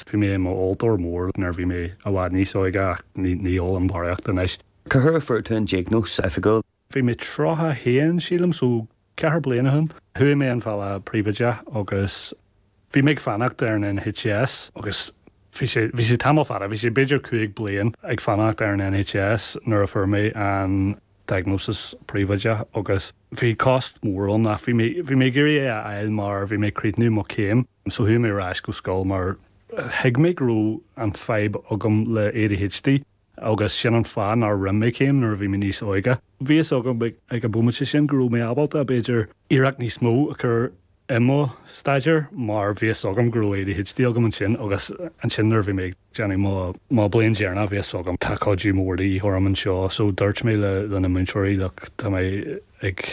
Bhí mé i m'óltóir mór nuair a bhí mé i bhfad níos óige ach ní ólaim barraíocht anois. Cá huair a fuair tú an diagnóis oifigiúil? Bhí mé 31 sílim so ceithre bliana ó shin. Chuaigh mé an bealach príobháideach agus bhí mé ag fanacht ar an NHS agus bhí sé, bhí sé tamall fada, bhí sé b'fhéidir cúig bliain ag fanacht ar an NHS nuair a fuair mé an diagnosis príobháideach agus bhí costas mór ann ach bhí mé, bhí mé ag iarraidh é a fháil mar bhí mé ag críochnú mo chéim. So chuaigh mé ar ais go scoil mar thuig mé go raibh an fadhb agam le ADHD agus sin an fáth nár rinne mé céim nuair a bhí mé níos óige. Bhí a fhios agam ag an bhomaite sin go raibh mé ábalta b'fhéidir iarracht níos mó a chur i mo staidéar mar bhí a fhios agam go raibh ADHD agam ansin agus ansin nuair a bhí mé ag déanamh mo mo bliain dheireanach bhí a fhios agam tá cuidiú mór de dhíth orm anseo so dúirt mé leis na múinteoirí look tá mé ag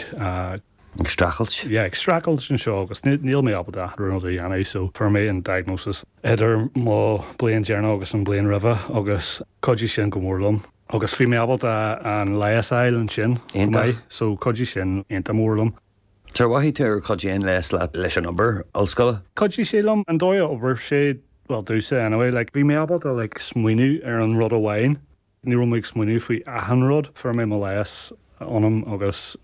Ag streachailt? Yeah, ag streachailt anseo agus níl mé ábalta achan rud a dhéanamh so fuair mé an diagnosis idir mo bliain deireanach agus an bliain roimhe agus chuidigh sin go mór liom agus bhí mé ábalta an leigheas a fháil ansin chomh maith so chuidigh sin iontach mór liom. Cad é mar a mhothaigh tú gur chuidigh an leigheas leat leis an obair ollscoile? Chuidigh sé liom an dóigh a d'obair sé, bhuel domhsa anyway like bhí mé ábalta like smaoineamh ar an rud amháin Ní raibh mé ag smaoineamh faoi achan rud. Fuair mé mo leigheas ionam agus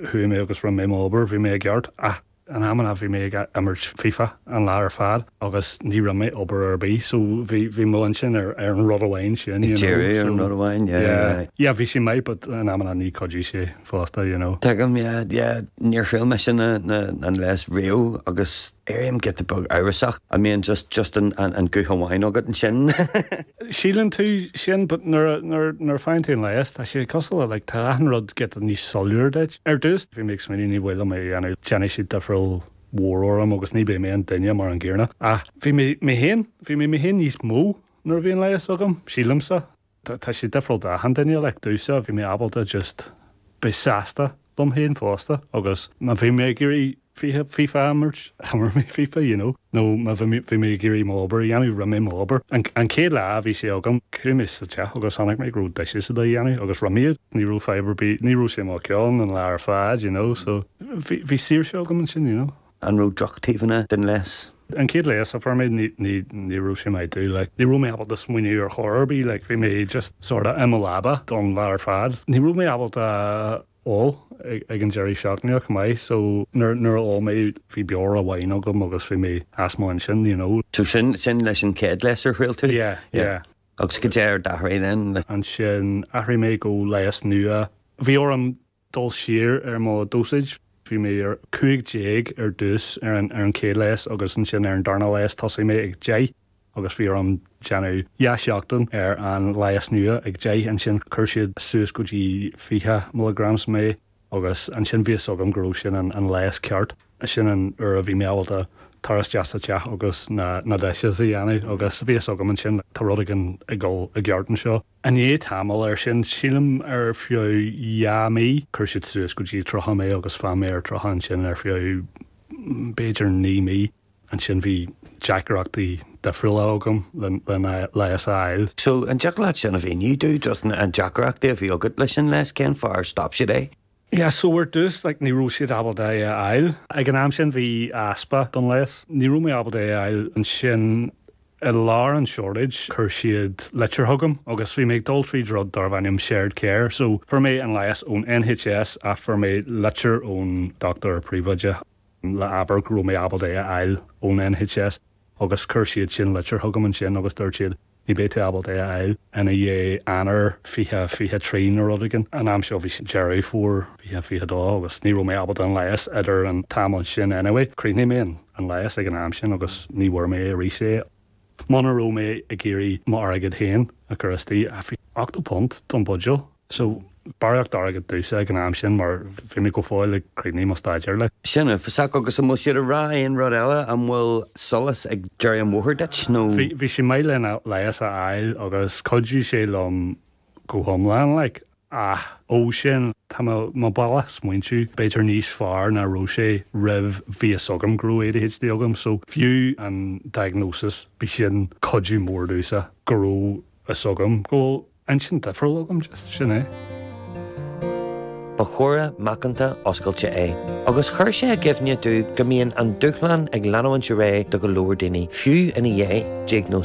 chuaigh mé agus rinne mé m'obair. Bhí mé i gceart ach in amanna bhí mé ag imirt fifa an lá ar fad agus ní rinne mé obair ar bith. So bhí bhí m'intinn ar an rud amháin sin, you know. Ag díriú ar an rud amháin, yeah, yeah. Yeah, bhí sé maith but in amanna níor chuidigh sé. fosta you know. Tuigim yeah yeah. Níor thriail mise na na an leigheas riamh agus éirím giota beag amhrasach an mbíonn just just an an guth amháin agat ansin? Síleann tú sin but nuair a nuair nuair a faigheann tú an leigheas tá sé cosúil le like tá achan rud giota níos soiléire duit. Ar dtús bhí mé ag smaoineamh ní mhaith liom é a dhéanamh déanfaidh sé difríocht mhór orm agus ní beidh mé an duine mar an gcéanna ach bhí mé mé féin bhí mé mé féin níos mó nuair a bhí an leigheas agam, sílimse. tá sé difriúil d'achan duine, like, domhsa, bhí mé ábalta just beith sásta liom féin fosta agus má bhí mé ag iarraidh fiche, fifa a imirt, d'imir mé fifa, you know, nó má bhí mé, bhí mé ag iarraidh m'obair a dhéanamh, rinne mé m'obair. An, an chéad lá a bhí sé agam, chuaigh mé sa teach agus chonaic mé go raibh dishes a' dhéanamh agus rinne mé iad, ní raibh fadhb ar bith, ní raibh sé i mo cheann an lá ar fad, you know, so bhí, bhí saoirse agam ansin, you know. An raibh drochtaobhanna den leigheas? An chéad leigheas a fuair mé ní raibh sé maith domh. Ní raibh mé ábalta smaoineamh ar chor ar bith. Bhí mé just sort of i mo leaba don lá ar fad. Ní raibh mé ábalta ól ag an deireadh seachtaine chomh maith so nuair a d'ól mé bhí beoir amháin agam agus bhí mé as mo cheann ansin you know. So sin leis an chéad leigheas a thriail tú? Yeah, yeah. Agus cad é a d'athraigh then? Ansin athraigh mé go leigheas nua. Bhí orm dul siar ar mo dosage. Bhí mé ar 15 ar dtús ar an chéad leigheas agus ansin ar an darna leigheas tosaigh mé ag deich agus bhí orm déanamh dhá sheachtain ar an leigheas nua ag deich ansin chuir siad suas go dtí 20 milligrams mé agus ansin bhí fhios agam go raibh sin an leigheas ceart. Sin an uair a bhí mé ábalta tar isteach sa teach agus na dishes a dhéanamh agus bhí fhios agam ansin tá rud éigin ag dul i gceart anseo. I ndiaidh tamaill air sin, sílim ar feadh dhá mí, chuir siad suas go dtí tríocha mé agus d'fhan mé ar tríocha ansin ar feadh b'fhéidir naoi mí. Ansin bhí deacrachtaí difriúla agam lena leigheas a fháil. So, an dtiocfadh leat sin a mhíniú? Dúinn, just an deacrachtaí a bhí agat leis an leigheas, cén fáth ar stop siad é? Yeah so ar dtús like ní raibh siad ábalta é a fháil. Ag an am sin bhí easpa den leigheas. Ní raibh mé ábalta é a fháil. Ansin i lár an shortage chuir siad litir chugam agus bhí mé ag dul tríd rud darbh ainm Shared Care so fuair mé an leigheas ón NHS ach fuair mé litir ón dochtúir príobháideach le abair go raibh mé ábalta é a fháil ón NHS agus chuir siad sin litir chugam ansin agus dúirt siad Ní bheidh tú ábalta é a fháil i ndiaidh Eanáir 2023 nó rud éigin. An am seo bhí sé Deireadh Fómhair 2022 agus ní raibh mé ábalta an leigheas idir an t-am sin anyway. Chríochnaigh mé an leigheas ag an am sin agus ní bhfuair mé arís é. Muna raibh mé ag iarraidh m'airgead féin a chur istigh, ach 80 punt don bhuidéal. So, barraíocht airgid domhsa ag an am sin mar bhí mé go fóill ag críochnú mo staidéar like. Sin uafásach agus an bhfuil siad ag rá aon rud eile? An bhfuil solas ag deireadh an bhóthair duit nó? Bhí sé maith lena leigheas a fháil agus chuidigh sé liom go hiomlán like ach ó sin tá mo, mo bhealach smaointiú b'fhéidir níos fearr ná raibh sé roimh bhí fhios agam go raibh ADHD agam so fiú an diagnosis bhí sin cuidiú mór domhsa go raibh fhios agam go raibh Inchinn difriúil agam? Just sin é. Ba chomhrá macánta oscailte é agus chuir sé i gcuimhne domh go mbíonn an dúshlán ag leanúint ar aghaidh do go leor daoine, fiú i ndiaidh diagnóis.